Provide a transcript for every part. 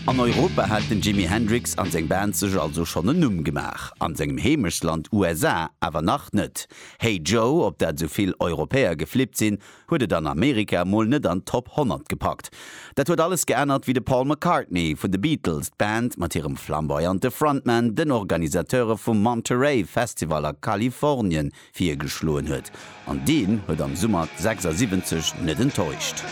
An Europa hat den Jimi Hendrix an seng Band sech also schonn en Numm gemaach, an sengem Heemechtsland USA awer nach net. Hey Joe, op dat esou vill Europäer geflippt sinn, huet et an Amerika mol net an d'Top 100 gepackt. Dat huet alles geännert wéi de Paul McCartney vun de Beatles d'Band mat hirem flamboyante Frontman den Organisateure vum Monterey Festival a Kalifornien virgeschloen huet an deen huet am Summer 76 net enttäuscht.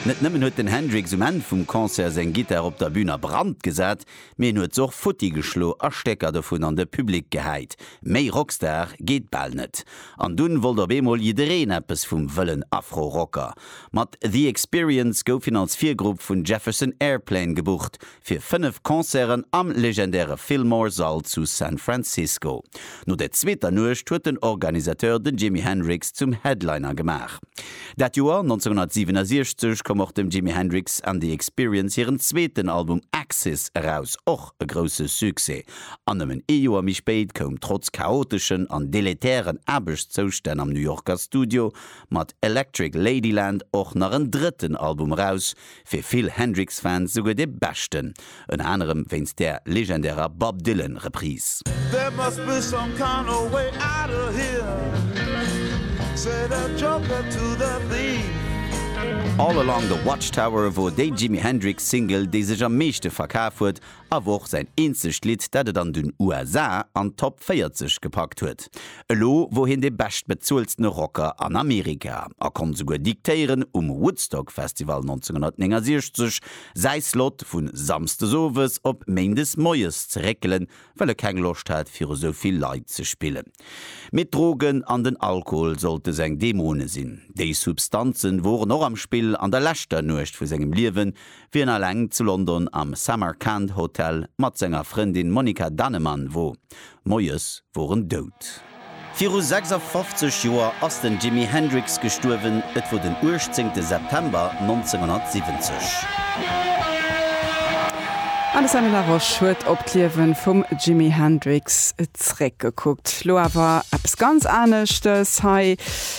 Net nëmmen huet den Hendrix um Enn vum Concert seng Gittar op der Bün a Brand gesat, Mee en huet se och futti geschlo a Stécker dovun an de Public gehäit. Méi Rockstar geet bal net. An dunn wollt op eemol jiddereen eppes vum wëllen Afro-Rocker. Mat The Experience gouf hien als Virgrupp vun Jefferson Airplane gebucht fir 5 Concerten am legendäre Fillmore Sall zu San Francisco. No der zweeter Nuecht huet den Organisateur den Jimi Hendrix zum Headliner gemaach. Dat Joer 1967 koum och dem Jimi Hendrix and the Experience hiren zweeten Album Axis eraus, och e grousse Succès. An nëmmen ee Joer méi spéit koum trotz chaoteschen an deletären Aarbechtszoustänn am New Yorker Studio mat Electric Ladyland och nach en drëtten Album eraus, Fir vill Hendrix-Fans souguer de beschten, ënner anerem wéinst där legendärer Bob Dylan Reprise. There must be some kind of way out of here, said the joker to the thief. All Along the Watchtower wor déi Jimi Hendrix Single déi sech am meeschte verkaf huet awer och säin eenzegt Lidd, dat et an den USA an d'Top 40 gepackt huet. Elo wor hien de beschtbezueltene Rocker an Amerika a konnt souguer diktéieren, um Woodstock Festival 1969 säi Slot vu Samsdes Owes op Méindes Moies ze réckelen, well e keng Loscht hat viru sou vill Leit ze spillen. Mee d'Drogen an den Alkohol sollte seng Dämone sinn. Déi Substanze woren och am Spill an der leschter Nuecht vu sengem Liewen, Wien alleng zu London am Samarkand Hotel mat senger Frëndin Monika Dannemann wo Moies wor en dout. Viru 56 Joer ass den Jimi Hendrix gestuerwen, et wor den 18 September 1970. D'Alessandra Laroche huet op d'Liewe vum Jimi Hendrix zeréckgekuckt. Lo awer eppes ganz aneschtes hei.